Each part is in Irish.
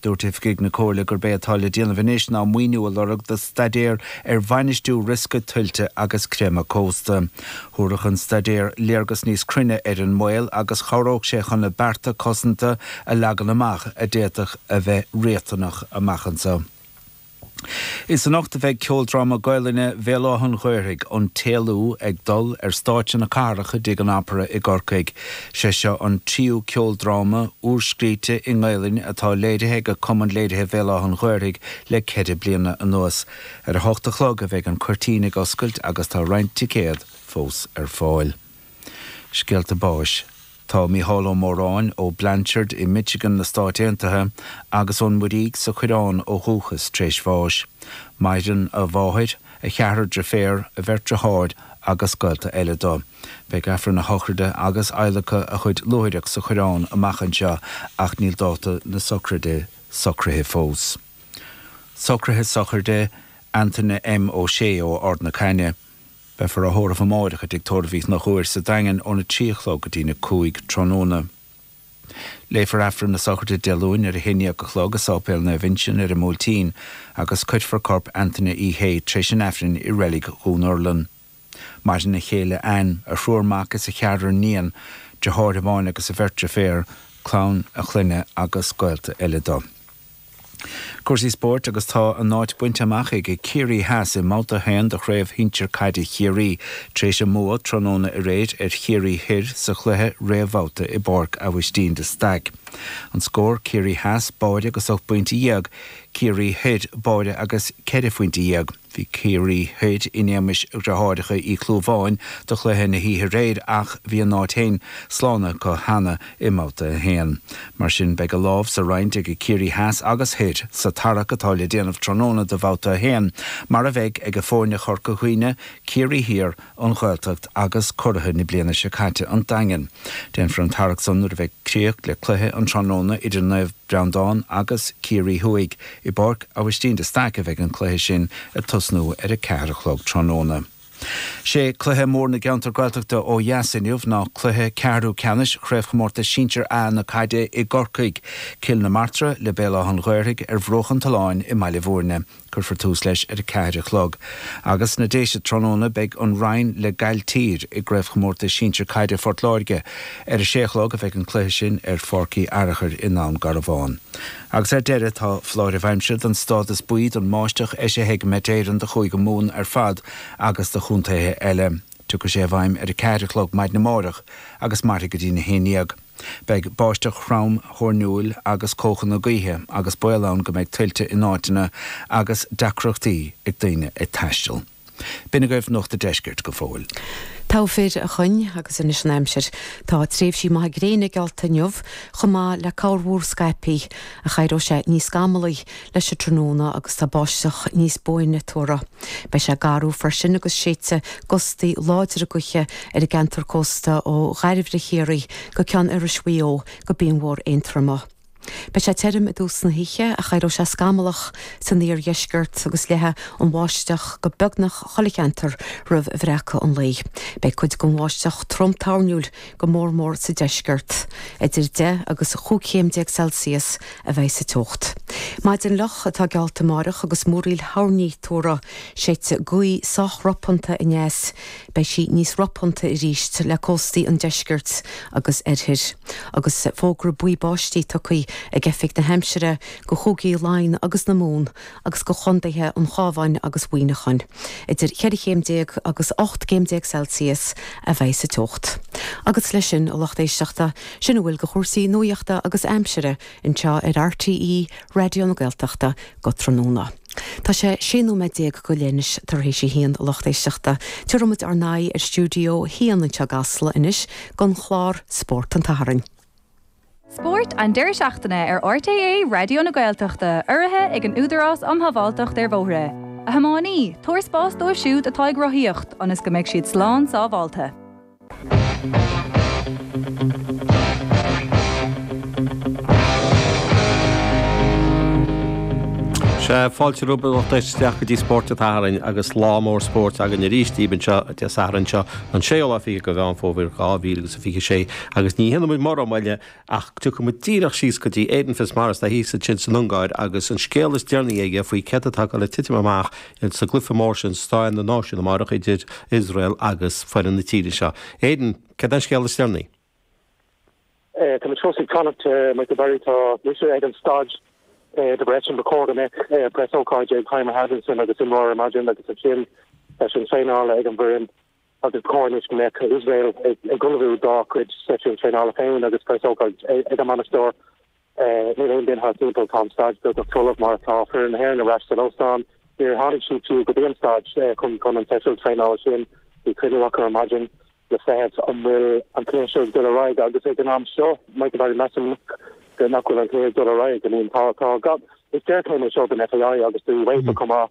Dúirt oifigigh na Comhairle gurb é atá le déanamh anois ná maoiniú a lorg do staidéar ar bhainistiú riosca tuilte agus creimeadh cósta. Thabharfadh an staidéar léargas níos cruinne ar an mbaol agus chabhródh sé chun na bearta cosanta a leagan amach a d'fhéadfadh a bheith riachtanach amach anseo. Is anocht a bheidh ceoldráma Gaolainne Bhéal Átha an Ghaorthaidh, An tÉalú, ag dul ar stáitse na cathrach i dTigh an Opera i gCorcaigh. Sé seo an tríú ceoldráma úr-scríte i nGaolainn atá léirithe ag Cumann Léirithe Bhéal Átha an Ghaorthaidh le ceithre bliana anuas. Ar a hocht a chlog a bheidh an cuirtín ag oscailt agus tá roinnt ticéad fós ar fáil. Scéalta Báis. Tá Micheál Ó Móráin ó Blanchard i Michigan sna Stáit Aontaithe agus ón Muirígh sa Choireán ó dhúchas tar éis bháis. Maireann a mháthair, a cheathrar driféar, a bheirt driotháir agus gaolta eile do. Beidh Aifreann a shochraide agus adhlacadh a chuid luaithreach sa Choireán amach anseo ach níl dáta na sochraide socraithe fós. Socraithe sochraide Antaine M. Ó Sé ó Ard na Caithne. Beifear á thórramh amáireach i dTigh Tórraimh Mhic Ghearailt sa Daingean óna trí a chlog go dtína cúig tráthnóna. Léifear Aifreann na Sochraide Dé Luain ar a haon dhéag a chlog i Séipéal Naomh Uinseann ar an mBuailtín agus cuirfear corp Antaine Uí Shé tréis an Aifrinn i reilig Dhún Urlann. Maireann a chéile Anne, a thriúr mac is a cheathrar iníon, deartháir amháin agus a bheirt deirféar, clann a chlainne agus gaolta eile do. Cúrsaí spóirt agus tá a n-áit bainte amach ag Ciarraí Theas i mbabhta 1 de Chraobh Shinsir Caide Chiarraí tar éis a mbua tráthnóna aréir ar Chiarraí Thoir sa chluiche réamhbhabhta i bPáirc Abhaistín de Staic an scór, Ciarraí Theas, báire agus ocht bpointe dhéag, Ciarraí Thoir, báire agus ceithre phointe dhéag. Bhí Ciarraí Thoir in éagmais dhreatháireacha Uí Chlúmháin do chluiche na hoíche aréir ach bhí a n-áit féin slán acu cheana i mBabhta 1. Mar sin beidh a lámh sa roinnt ag Ciarraí Theas agus Thoir sa tarrac atá le déanamh tráthnóna do Bhabhta 1, mar a bheidh ag foirne Chorca Dhuibhne, Ciarraí Thiar an Ghaeltacht agus curaidh na bliana seo caite, An Daingean. Déanfar an tarrac san nuair a bheidh críoch le cluiche an tráthnóna idir Naomh Breandán agus Ciarraí Thuaidh. I bPáirc Abhaistín de Staic a bheidh an cluiche sin ag tosnú ar a ceathair a chlog tráthnóna. Sé cluiche mór na gceantar Gaeltachta ó dheas inniu ná cluiche ceathrú ceannais Chraobhchomórtas Sinsear A na caide i gCorcaigh, Cill na Martra le Béal Átha'n Ghaorthaidh ar Bhruach an tSuláin i mBaile Bhúirne. Cuirfear tús leis ar a ceathair a chlog. Agus sna Déise tráthnóna beidh An Rinn le Gailltír i gCraobhchomórtas Sinsear Caide Phort Láirge. Ar a sé a chlog a bheidh an cluiche sin ar Pháirc Uí Fhearachair i nDún Garbhán. Agus ar deireadh tá foláireamh aimsire don stádas buí don mbáisteach eisithe ag Met Éireann do Chúige Mumhan ar fad agus do chontaetha eile. Tiocfaidh sé i bhfeidhm ar a ceathair a chlog maidin amárach agus mairfidh go dtína haon dhéag. Beidh báisteach throm thoirniúil agus cóchanna gaoithe agus baol ann go mbeidh tuilte in áiteanna agus deacrachtaí ag daoine ag taisteal. B'in é agaibh Nuacht a' Deiscirt go fóill. Tadhg Mac Dhonnagáin, agus anois an aimsir. Tá tréimhsí maithe gréine geallta inniu, chomh maith le corrmhúr scaipthe, ach éireoidh sé níos scamallaí leis an tráthnóna agus tá báisteach níos buaine tuartha. Beidh sé gaofar freisin agus séidfidh gustaí láidre gaoithe ar an gceantar cósta ó Dhairbhre Chiarraí go Ceann Iorrais Mhaigh Eo go Binn Mhór Aontroma. Beidh sé tirim i dtús na hoíche ach éireoidh sé scamallach san iardheisceart agus leathfaidh an bháisteach go beagnach chuile cheantar roimh bhreacadh an lae. Beidh cuid den bháisteach trom toirniúil. go mór mór sa deisceart. Idir deich agus cúig chéim déag Celsius a bheidh sa teocht. Maidin fhliuch atá geallta amáireach agus múraíl thoirní tuartha. Séidfidh gaoth sách ropánta aneas. Beidh sí níos ropánta arís le cóstaí an deiscirt agus oirthir. Agus fógra buí báistí tugtha ag Oifig na hAimsire do Chúigí Laighean agus na Mumhan agus do chontaetha an Chábháin agus Mhuíneacháin. Idir cheithre chéim déag agus ocht gcéim déag Celsius a bheidh sa teocht. Agus leis sin, a lucht éisteachta, sin a bhfuil de chúrsaí nuaíochta agus aimsire anseo ar RTÉ Raidió na Gaeltachta go tráthnóna. Tá sé sé nóiméad déag go leith anois tar éis a haon, a lucht éisteachta. Tabharfaidh muid ár n-aghaidh ar stiúideo a haon anseo i gCasla anois don chlár Spórt an tSathairn. Spórt an deireadh seachtaine ar RTÉ Raidió na Gaeltachta, urraithe ag an Údarás um Shábháilteacht ar Bhóithre. A thiománaí, tabhair spás dóibh siúd atá ag rothaíocht ionas go mbeidh siad slán sábháilte. Sea, fáilte romhaibh isteach go dtí Spórt an tSathairn agus lá mór spóirt againn arís daoibh anseo Dé Sathairn seo, an 26ú de Mheán Fómhair 2026. Agus ní dhéanfaidh muid mórán moille ach gabhfaidh muid díreach síos go dtí Aidan Fitzmaurice atá thíos ansin san Ungáir agus an scéal is deireanaí aige faoi céard atá le titim amach sa gcluiche mór sin Sraith na Náisiún amárach idir Iosrael agus foireann na tíre seo. Aidan, céard é an scéal is deireanaí? Tá muid fós ag fanacht, Michael Barry, tá mise ag an staid i Debrecen ba chóir go mbeadh preasócáid ag Heimir Hallgrímsson agus imreoir ar maidin agus ansin seisiún traenála ag an bhfoireann agus ba chóir anois go mbeadh Iosrael ag ullmhú dá cuid seisiún traenála féin agus preasócáid ag a mbainisteoir. Níl aon duine timpeall tá an staid beagnach folamh mar atá foireann na hÉireann ar ais san óstán. Níor tháinig siad fiú go dtí an staid chun chun an seisiún traenála sin. Bhí cruinniú acu ar maidin le feiceáil an bhfuil an cluiche seo ag dul ar aghaidh agus ag an am seo, Michael Barry, measaim go nach bhfuil an cluiche ag dul ar aghaidh. I mean tá tá sé an-deacair é seo don FAI agus do UEFA chomh maith.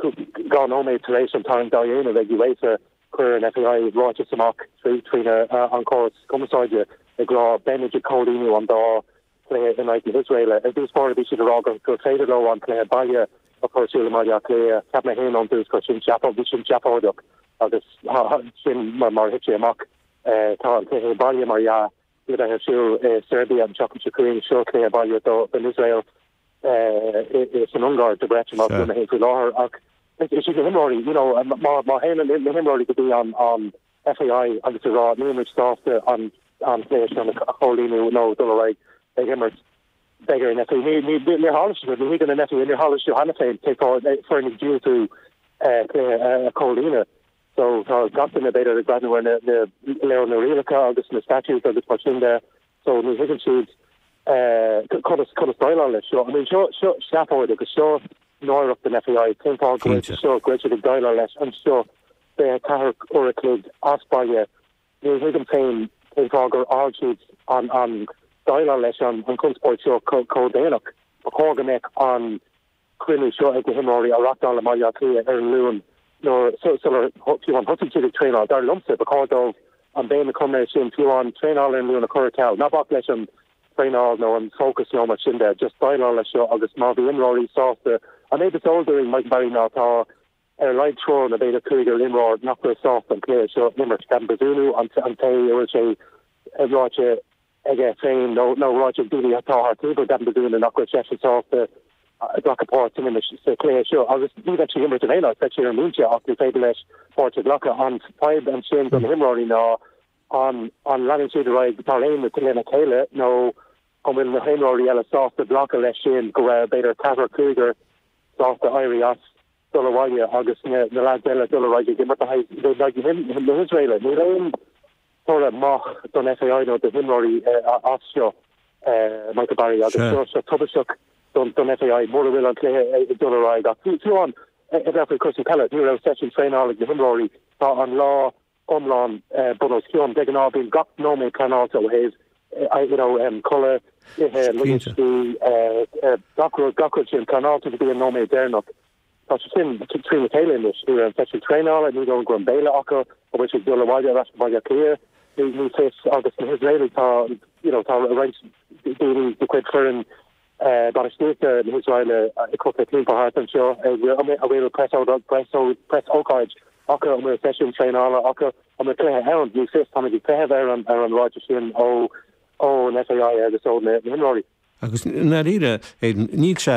Dhá nóiméad tar éis an tarraingt a dhéanamh ag UEFA chuir an FAI ráiteas amach tríd an córas cumarsáide ag rá beimid ag comhlíonadh an dá chluiche in aghaidh na hIosraeile. Ar dtús báire bhí siad ag rá gur féidir leo an cluiche baile a chur ar siúl i mBaile Átha Cliath. Cheap mé féin ón dtús gur sin seafóid, bhí sin seafóideach agus sin mar a thit sé amach. Tá an cluiche baile, mar dhea, le bheith ar siúl i Seirbia an tseachtain seo chugainn, seo cluiche baile do Iosrael. Is san Ungáir do Phoblacht na hÉireann faoi láthair ach is iad na himreoirí, you know, má théann na himreoirí go dtí an FAI agus ag rá níl muid sásta an cluiche sin a chomhlíonadh nó dul ar aghaidh ag imirt, beidh ar an FAI, níor tharla sé sin, ní thuigeann an FAI, níor tharla sé cheana féin foirne ag diúltú cluiche a chomhlíonadh. So tá gach duine b'fhéidir ag breathnú ar na leabhair, na rialacha agus na statutes agus mar sin de so ní thuigeann siad conas conas déileáil leis seo. I mean seo seo seafóid agus seo náireacht an FAI. Cén fáth go bhfuil Cinnte. seo go bhfuil siad ag déileáil leis anseo fiche ceathair uair a chloig as baile. Ní thuigim féin cén fáth gur fhág siad an an déileáil leis an an conspóid seo chomh déanach. Ba chóir go mbeadh an cruinniú seo ag na himreoirí a reachtáil i mBaile Átha Cliath ar an Luan nuair, sular, fiú amháin thosaigh siad ag traenáil. Dar liomsa, ba chóir dóibh an béim a chur air sin, fiú amháin traenáil ar an Luan a chur ar ceal. Ná bac leis an traenáil nó an fócas nó mar sin de, just déileáil leis seo agus má bhí imreoirí sásta An méid is eol dúinn, Micheál, ná tá ar a laghad triúr nó b'fhéidir cúigear imreoir nach bhfuil sásta an cluiche seo a imirt, Gavin Bazunu, an té a bhfuil sé ráite aige féin nó nó ráite ag daoine atá thart taobh air, Gavin Bazunu, nach bhfuil seisean sásta glacadh páirt san imirt sa chluiche seo agus ní bheidh sé ag imirt in aon áit, ní bheidh sé ar an mbinse ach ní féidir leis páirt a ghlacadh. An fadhb ansin do na himreoirí ná an an leanann siad ar aghaidh mar aon lena chéile nó an bhfuil na himreoirí eile sásta glacadh leis sin go bhfuil b'fhéidir ceathrar cúigear sásta éirí as dul abhaile agus na leaids eile dul ar aghaidh ag imirt in aghaidh na hIosraeile. Níl aon toradh maith don FAI nó do himreoirí as seo, Michael Barry, agus tá sé tubaisteach don FAI mura bhfuil an cluiche ag dul ar aghaidh ach fiú amháin ó thaobh cúrsaí peile, ní raibh seisiún traenála ag na himreoirí, tá an lá iomlán bun os cionn. De ghnáth bíonn gach nóiméad pleanáilte ó thaobh you know codladh, ithe, luí, gach rud, gach rud sin pleanáilte go dtí an nóiméad deireanach. Tá sé sin trína chéile anois. Ní raibh an seisiún traenála, ní raibh an gnáthbhéile acu, an bhfuil siad ag dul abhaile ar ais go Baile Átha Cliath? Ní fios agus na hIosraelaigh tá you know tá roinnt daoine de chuid foireann Bainistíochta na hIosraile ag crochadh timpeall thart anseo an bhfuil preasócáid acu an bhfuil seisiún traenála acu an bhfuil cluiche ann níl fhios táimid ag feitheamh ar an ar an ráiteas sin ó ó an FAI agus ó na himreoirí. Agus i ndáiríre níl sé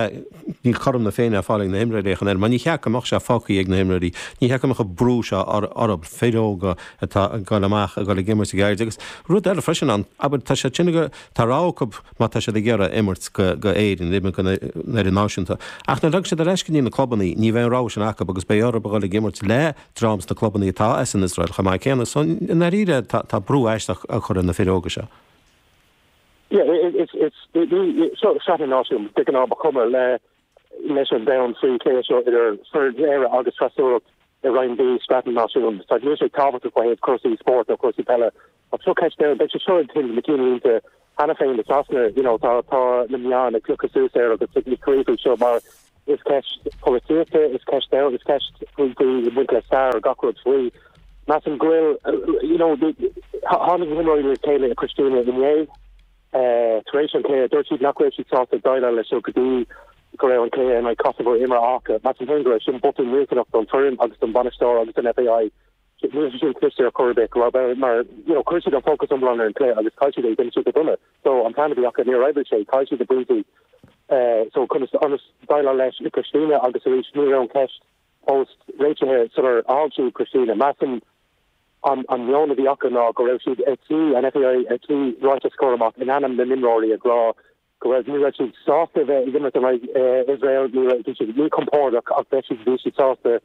níl cothrom na Féinne á fáil ag na himreoirí ach an oiread mar níor cheart go mbeadh sé fágtha ag na himreoirí níor cheart go mbeadh an brú seo orthu fir óga atá ag dul amach ag dul ag imirt go gairid agus rud eile freisin ann abair tá siad sin ag rá tá rogha acu má tá siad ag iarraidh imirt go hÉirinn, imirt go hidirnáisiúnta. Ach nuair a ghabhfaidh siad ar ais go dtí na clubannaí, ní bheidh an rogha sin acu agus beidh orthub a dhul ag imirt le dream sna clubannaí atá as an Iosrael chomh maith céanna. So, i ndáiríre, tá brú aisteach á chur ar na fir óga seo. Yeah, it's, it's, ní, so, Sraith na Náisiún, de gnáth ba chuma le leis an domhan faoi cluiche seo idir na hÉireann agus Iosrael i Roinn B Sraith na Náisiún, sa níl aon tábhacht ó thaobh cúrsaí spóirt cúrsaí peile Ach seo ceist a mbeidh sé seo ag tuilleamh ceannlínte cheana féin i Sasana. You know, tá, tá na meáin ag piocadh suas air agus ag ag scríobh faoi seo, mar is ceist polaitíochta, is ceist domh, is ceist faoi, faoi ag baint le stair ar gach rud faoi. Measaim go bhfuil, you know, the, thá, tháinig na himreoirí le chéile i bPristina inné, eh, tar éis an cluiche. Dúirt siad nach raibh siad sásta déileáil leis seo go dtí go raibh an cluiche in aghaidh Kosovo imeartha acu. Measaim féin gurbh é sin botún millteanach don foireann agus don bhainisteoir agus don FAI Ní raibh sin cliste ar chor ar bith, mar you know chuir siad an fócas iomlán ar an cluiche agus chaill siad é, d'imir siad go dona so an plean a bhí acu níor oibrigh sé, chaill siad na pointí so chun ionas déileáil leis i bPristina agus arís ní raibh an cheist fós réitithe sular fhág siad Pristina. Measaim an an meon a bhí acu ná go raibh siad ar tí an FAI ar tí ráiteas a chur amach in ainm na n-imreoirí ag rá go raibh ní raibh siad sásta bheith ag imirt in aghaidh Iosrael, go raibh siad míchompordach ach bhí siad bhí siad sásta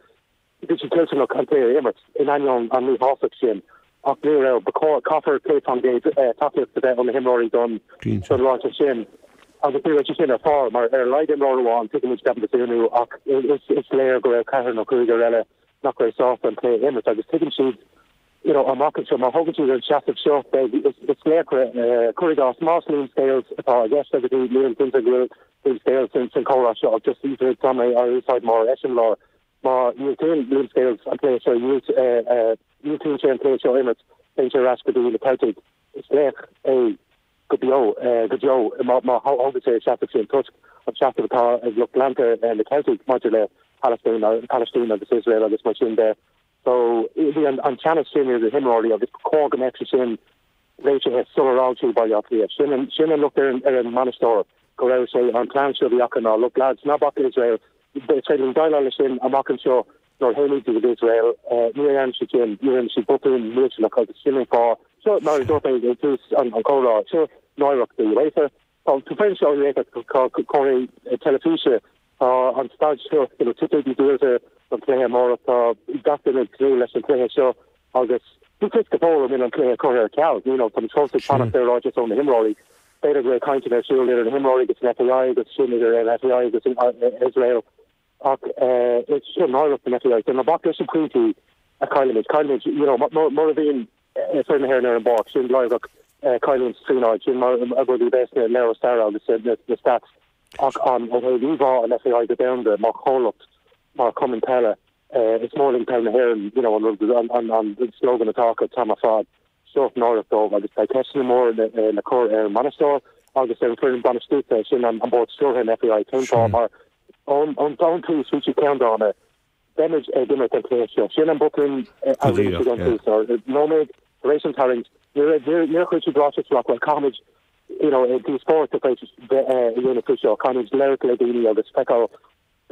bhí siad toilteanach an cluiche a imirt in ainneoin an míshásamh sin ach ní raibh ba chóir caithfear 100 faoin gcéad tacaíocht a bheith ó na himreoirí don don ráiteas sin agus ní raibh sé sin ar fáil mar ar a laghad imreoir amháin tuigimid ceapaim go Bazunu ach is is léir go raibh ceathrar nó cúigear eile nach raibh sásta an cluiche a imirt agus tuigeann siad You know, amach anseo, má thógann siad an seasamh seo, beidh, is, is laochra, eh, cuir i gcás, más Liam Scales atá i gceist agat, Liam, Liam, seans go bhfuil Liam Scales san, san chomhrá seo, ach just even tá mé á úsáid mar eiseamláir, má dhiúltaíonn Liam Scales an cluiche seo, dhiúlt, eh, eh, dhiúltaíonn sé an cluiche seo a imirt, téann sé ar ais go dtí na Ceiltigh, is laoch é go beo, eh, go deo, má, má thógann sé an seasamh sin toisc an seasamh atá ag lucht leanta, eh, na Ceiltigh maidir le Palaistín, Palaistín agus Iosrael agus mar sin de. So, bhí an teannas sin idir na himreoirí agus ba chóir go mbeadh sé sin réitithe sular fhág siad Baile Átha Cliath. Sin an, sin an locht ar an, ar an mbainisteoir go raibh sé, an plean seo a bhí acu ná, look lads, ná bac le Israel, is féidir linn déileáil le sin amach anseo nuair a thagaimid go dtí Israel. Ní dhearna siad sin, rinne siad botún millteanach agus sin an fáth, seo mar a dúirt mé ag tús an, an chomhrá, seo náireach do UEFA. Tá tú féin seo réithe comhlachtaí teilifíse. Tá an staid seo, tá na ticéidí díolta don chluiche amárach. Tá gach duine ag tnúth leis an chluiche seo agus ní fios go fóill an bhfuil an cluiche curtha ar ceal. Táimid fós ag fanacht ar ráiteas ó na himreoirí. B'fhéidir go bhfuil cainteanna ar siúl idir na himreoirí agus an FAI agus ansin idir an FAI agus Iosrael. Ach is i ndáiríreacht an FAI ná bac leis na pointí a caillimid. Caillimid, you know, mura bhíonn foireann na hÉireann ar an bpáirc, sin láithreach, caillimid trí náid, sin mar a bheidh sé sna leabhair staire agus na stats. Ach an bhfuil aon íomhá an FAI go domhanda mar chomhlacht, mar chumann peile, is mór linn peil na hÉireann, you know, an rud, an slogan atá acu, Tá sé ar fad. sórt náireach dóibh agus beidh ceisteanna móra le cur ar an mbainisteoir agus ar an foireann bainistíochta, sin an bord stiúrtha an FAI, cén fáth, mar ón tús bhí siad ceanndána, beimid ag imirt an cluiche seo, sin an botún a rinne siad ón tús, nóiméad tar éis an tarraingt níor chuir siad ráiteas amach bhuel caithfimid you know, díospóireacht a bheith eh, a dhéanamh faoi seo, caithfimid labhairt le daoine agus feiceáil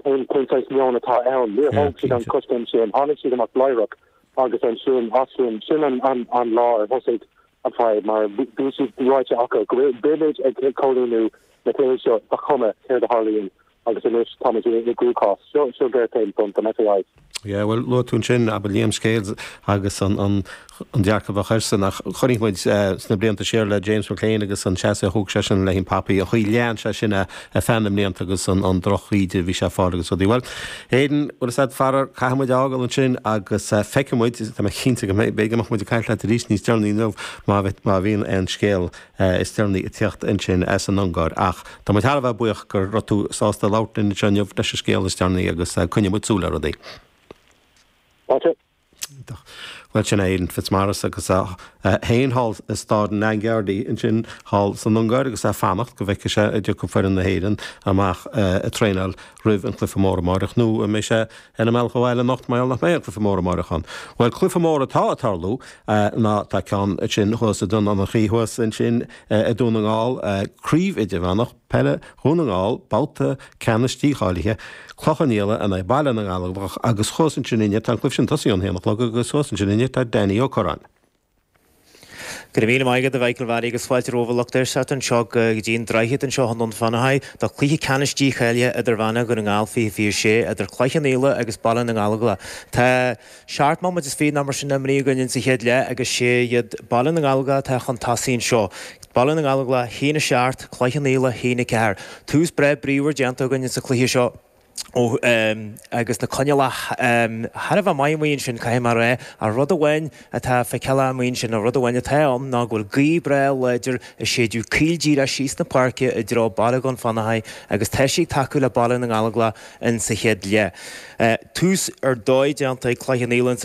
Cén cén saghas meon atá ann? Níor Yeah, thóg siad an cinnte. coiscéim sin, tháinig siad amach láithreach agus ansin as sin, sin an an an lá ar thosaigh an fadhb mar bhí bhí siad ráite acu go bhfuil beimid ag ag comhlíonú na cluichí seo ba chuma céard a tharlaíonn agus anois táimid i i gcruachás. Seo seo géarchéim don don FAI. Yeah, bhuel, luaigh tú ansin ab ea Liam Scales agus an dearcadh a bheadh airsean ach chonaic muid sna blianta siar le James McClean agus an seasamh a thóg seisean le haghaidh an poppy, an chaoi a lean sé sin ar feadh na mblianta agus an drochíde a bhí sé ag fáil agus rudaí. Bhuel, Aidan, bhuel éist faraor, caithfidh muid a fhágáil ansin agus feicfidh muid, tá mé cinnte go mbeidh, go mbeidh muid ag caint leat arís níos deireanaí inniu má bhíonn an scéal is deireanaí ag teacht ansin as an Ungáir. Ach tá muid thar a bheith buíoch go raibh tú sásta labhairt linn anseo inniu leis an scéal is deireanaí agus coinneoidh muid súil ar rudaí. Iontach. Bhuel sin é Aidan Fitzmaurice agus é féin thall i Staid Nagyerdei ansin thall san Ungáir agus é ag fanacht go bhfeicfidh sé an dtiocfaidh foireann na hÉireann amach ag traenáil roimh an cluiche mór amárach nó an mbeidh sé Ar an mbealach abhaile anocht mar nach mbeidh an cluiche mór amáireach ann. Bhuel cluiche mór atá ag tarlú ná tá ceann ansin thuas i nDún Fionnachaidh thuas ansin i Dún na nGall, Craobh Idirmheánach Peile Dhún na nGall, babhta ceannais dícháilithe, Cloich Cheann Fhaola in aghaidh Baile na nGallóglach agus thuas ansin inniu tá an cluiche sin tosaithe ón haon a chlog agus thuas ansin inniu tá Danny Ó Curráin. Go raibh míle maith agat a Mhichael Bharry agus fáilte romhaibh a lucht éisteachta anseo go dtí an Droichead anseo i nDún Fionnachaidh do Cluiche Ceannais Dícháilithe Idirmheánach Dhún na nGall 2026 idir Cloich Cheann Fhaola agus Baile na nGallóglach. Tá seacht mbomaite is fiche nó mar sin imrithe againn insa chéad leath agus sé iad Baile na nGallóglach atá chun tosaigh anseo. Baile na nGallóglach, haon a seacht, Cloich Cheann Fhaola, haon a ceathair. Tús breá bríomhar déanta againn insa cluiche seo. ó agus na coinníollacha thar a bheith maith amuigh ansin, caithfidh mé a rá. Ach rud amháin atá feiceáil agam amuigh ansin, nó rud amháin atá ann, ná go bhfuil gaoth breá láidir ag séideadh caol díreach síos na páirce i dtreo bhaile Ghaeil Fhánada agus tá sí ag tacú le Baile na nGallóglach in sa chéad leath. Tús ar dóigh déanta ag Cloich Cheann Fhaola sa